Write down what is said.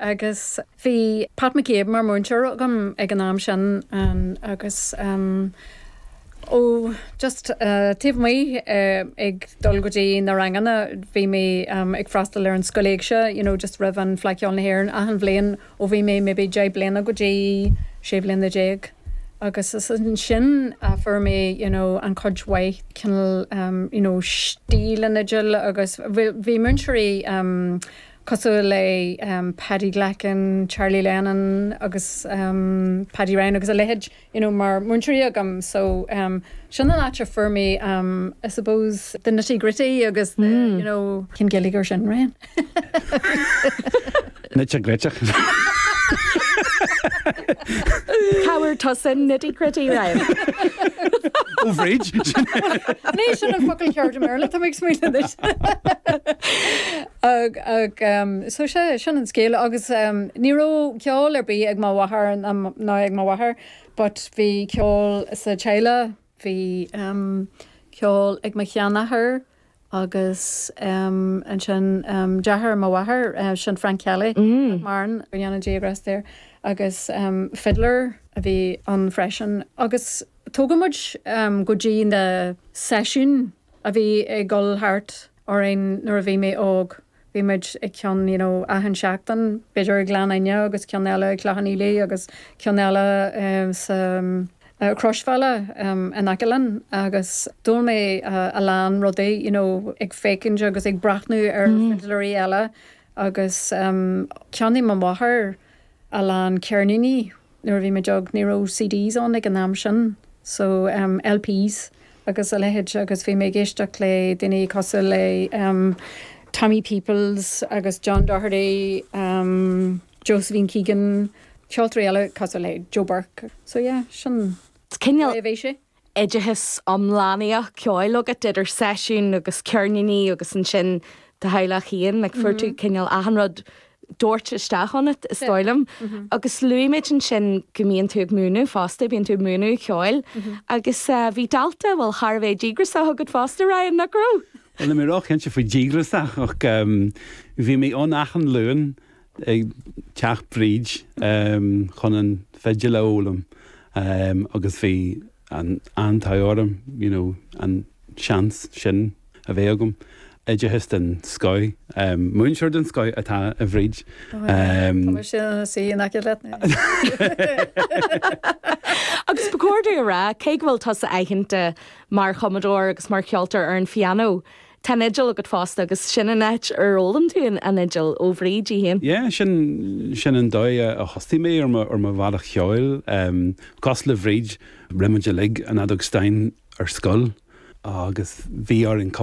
agus bhí Pat McCabe mar mhúinteoir agam ag an am sin agus ó just taobh amuigh ag dul go dtí na ranganna bhí mé ag freastal ar an Scoil Éigse you know just roimh an Fleadh Cheoil na hÉireann achan bhliain ó bhí mé maybe deich mbliana go dtí sé bhliana déag agus is ansin a fuair mé you know an-chuid mhaith cineál you know stíl na fidle agus bhí múinteoirí cosúil le Paddy Glackin, Charlie Lennon agus Paddy Ryan agus a leithéid you know mar múinteoirí agam so sin an áit a fuair mé I suppose the nitty gritty agus the you know cén Gaeilge ar sin Ryan? Nite griteach. Tabhair tusa an nitty gritty Ryan. Ó Bhríd! Ní sin an focal ceart i mBéarla, tá mé ag smaoineamh anois. Ag, ag, so is é sin an scéal agus ní raibh ceol ar bith ag mo mháthair ná, ná ag m'athair but bhí ceol sa teaghlach, bhí ceol ag mo sheanathair agus ansin deartháir mo mháthar, sin Frank Kelly, nach maireann, go ndéana Dia grásta air, agus fiddler a bhí ann freisin agus tugadh muid go dtí na seisiúin a bhí ag dul thart, orainn nuair a bhí mé óg. Bhí muid ag ceann you know achan seachtain, b'fhéidir i nGleann Fhinne agus ceann eile i gCloch Cheann Fhaola agus ceann eile sa Chroisbhealach in aice linn agus d'fhoghlaim mé a lán rudaí you know ag féachaint agus ag breathnú ar fhidléirí eile agus cheannaigh mo mháthair a lán ceirníní nuair a bhí muid óg ní raibh CDs ann ag an am sin so LPs agus a leithéid agus bhí mé ag éisteacht le daoine cosúil le Tommy Peoples agus John Doherty, Josephine Keegan, ceoltóirí eile cosúil le Joe Burke so yeah sin an dóigh a bhí sé. oideachas iomlánaíoch, ceoil agat idir seisiúin agus ceirníní agus ansin do theaghlach féin, like fuair tú cineál achan rud doirte isteach ionat is dóigh liom. Agus luaigh muid ansin go mbíonn tú ag múineadh fosta, mbíonn tú ag múineadh ceoil agus bhí dalta, bhuel, thar a bheith díograsach agat fosta, Ryan, nach raibh? Bhuel, níl mé ró-chinnte faoi díograsach ach bhí mé ann achan Luan. i dteach Bhríd chun an fidil a fhoghlaim agus bhí an t-ádh orm you know an seans sin a bheith agam. Oideachas den scoth, múinteoir den scoth atá i mBríd. Agus ba chóir dúinn a rá, cé go bhfuil tusa aitheanta mar chumadóir agus mar cheoltóir ar an phianó, Tá an fhidil agat fosta agus sin an áit ar fhoghlaim tú an fhidil ó Bhríd í féin. Yeah, sin, sin an dóigh a thosaigh mé ar mo, ar mo bhealach cheoil. Em, cosúil le Bríd, rinne muid uilig an fheadóg stáin ar scoil agus bhí orainn cup,